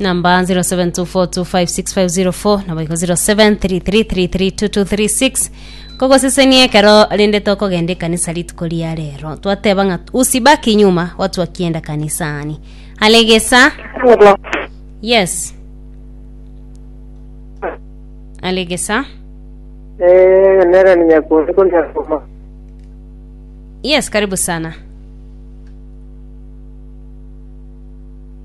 Number 0724256504 naboigo 0733332236 kogosesenia ekero rende tokogenda ekanisa rituko ria rero twateba ng'a usibaki nyuma watu wakienda kanisani alegesa yes alegesa Eh, nera ni nyakundi ko nyakuma. yes karibu sana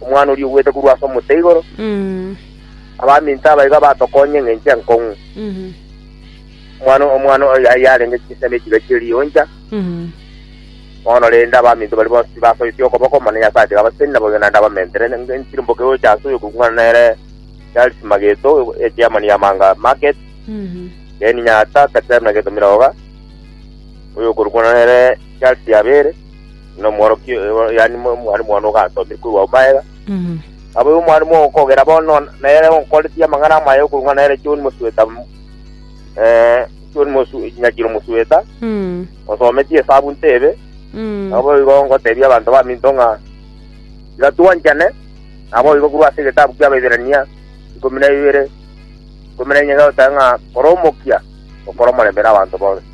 Omwana oria ogwete korwa ase omote igoro, abaminto aba iga batokonya eng'encho enkong'u. Omwana omwana oyo yari yarenge chinsa ne chiga chie riuncha, bono rende abaminto baria bonsi tibasoetie okoboko, mana Nyasae atiga abaseni naboigo naende abamentere nge- nchirumboke gocha ase oyo okong'wana nere Charles Mageto, echairman ya Manga Market, Ken Nyata, Katerina Getomiroga, oyo okorokwana nere Charles Yabere, nomworokia oyo, yaani mo- omwalimu one ogasomire korwa ombaega Mhm. abo omwalimu ogokogera bono nere onkoretie amang'ana amaye okorwa nere John Mosweta m- eh, John Mosu- Nyakiro Mosweta Mhm. osometie esabu ntebe Mhm. nabo igo ngotebia abanto baminto ng'a tiga twanchane nabo igo korwa ase egetabu kia Abaibirania ikomi na ibere ikomi na enye gagoteba ng'a kora omokia okora omorembe na abanto bonsi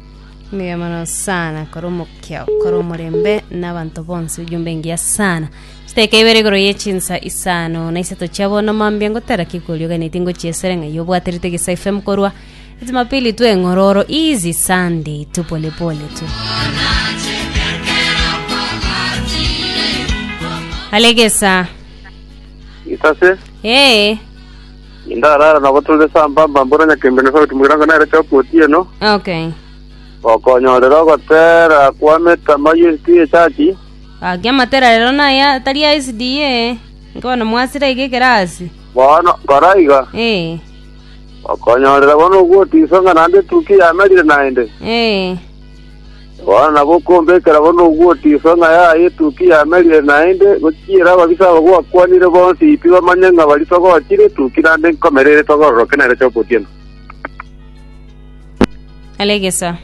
Mbuya mono sana kore omokia kore omorembe n'abanto bonsi ojumbe engiya sana chiteka ibere igoro ye chinsa isano na isato chia bono mambia ngotera kikorio ganeti ngochiesere ng'ai obwaterete gisa FM korwa Jumapili tu eng'ororo easy Sunday tu pole pole tu Alegesa Itase, ee Nindarara nabo tore sambamba mbuna nyakembe na sauti mogirango nere choka otieno, Okay. gokonyorera ogotera kwa metama y'ensi y'echachi, Gaki amatera rero naya tari a SDA. Nkobono mwasira iga ekerasi. bono nkora iga, Eh. gokonyorera bono ogwotiso ng'a naende etukia yamerire naende. Eh. Bono nabo okombekera bono ogwotiswa ng'a yaye etukia yamerire naende, gochiera ababisa aba gwakwanire bonsi pi bamanye ng'a baritogochire etukia naende nkomera ere etogororoke nere chi'okotienwa. Alegesa.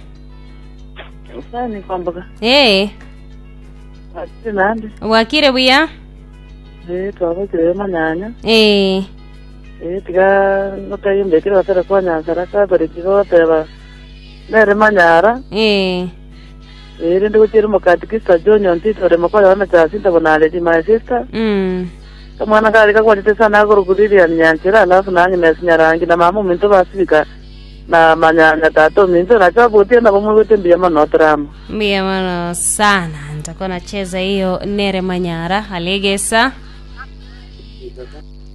Sani kwamboka. Ee, Ati nande. gwakire buya? Eh, twabakire manyanya. Ee, Eh, tiga notayembekire basere kwa nyansara kabere tiga oteba Nere manyara, Ee. ee, rende gochia rimo Catechista John Ontito ore mokori wa Mechasinta bono Aledi, my sister. Mm. Kamwana kare kagwachete sana akorokwa Lilian Nyanchera, alafu na Agnes Nyarangi, na mama ominto basibika, na manyanya tata ominto, nacho abotie nabo moigwete mbuya mono tore amo. Mbuya mono sana. Ntakuwa nacheza hiyo nere manyara. Alegesa.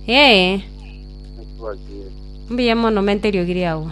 Ee. Mbuya mono menterio giri agwo.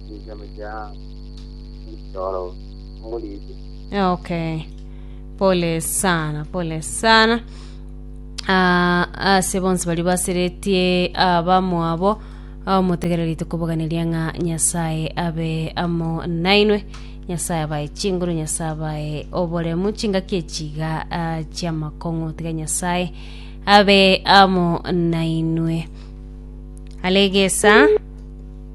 Okay. Pole sana, pole sana. Ah, ase bonsi bari baseretie abamwabo omotegerere rito koboganeria ng'a nyasaye abe amo nainwe nyasaye abaye chinguru nyasaye abaye oboremu chingaki echiga ah, chiamakong'u tiga nyasaye abe amo nainwe alegesa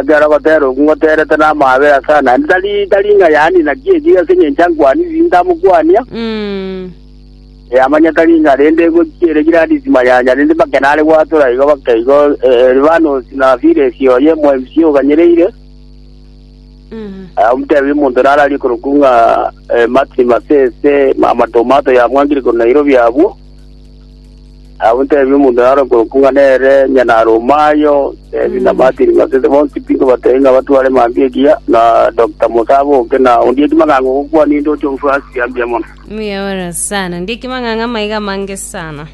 Ekero agotera okwo ngoterete n'amaabe ase Anani, tari tari ng'a yani naki eki ase engencho ankwanire ntamokwania, Mm. ee, amanye tari ng'a rende egochi ere girandi timanyanya, rende make nare gwatora igo bake igo eh, Elibanos na Firesi oye MMC oganyereire, Mm. Ah, omotebia omonto nararie korokwo ng'a eh, Martin Masese mama Tomato yamwangire korwa Nairobi abwo Abwo tebi omonto naro okorokwa ng'a nere Nyanyaromayo, tebi na Martin ng'a sese bonsi pi nkobatebie ng'a batware mantu egiya, na Dokita Musa aboke, na ondiek kimang'anga ogokwa ninde oche goswa ase chiambia mono. Mbuya ore sana. Ndieki mang'ang'a maiga amange sana.